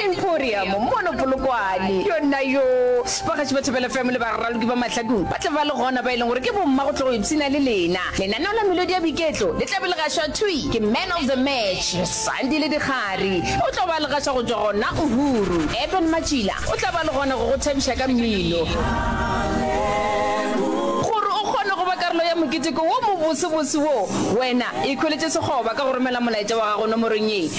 Emporium mono Polokwane. Yona yoo, bagatši ba Thapelo FM le baraloki ba Mahladung ba tla ba le gona, ba e leng gore ke bomma go tlo go ipshina le lena. Lenaneo la melodi ya boiketlo le tla be le gašwa thwi ke Man of the Match, Sandile Dikgari. O tlo ba le gaša go tšwa gona Uhuru. Eben Matšila o tla ba le gona go go thabiša ka mmino. Gore o kgone go ba karolo ya moketeko wo mobosebose wo, wena ikhweletše sekgoba ka go romela molaetša wa gago nomorong ye.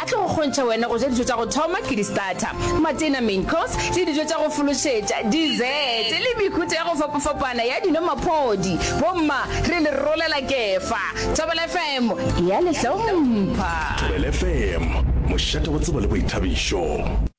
A tlo go kgontšha wena go ja dijo tša go thoma, ke di-starter, matena, main course, le dijo tša go fološetša, dessert, le mehuta ya go fapafapana ya dino, maphodi. Bomma, re le rolela kefa. Thobela FM e a le hlompha. Thobela FM, mošate wa tsebo le boithabišo.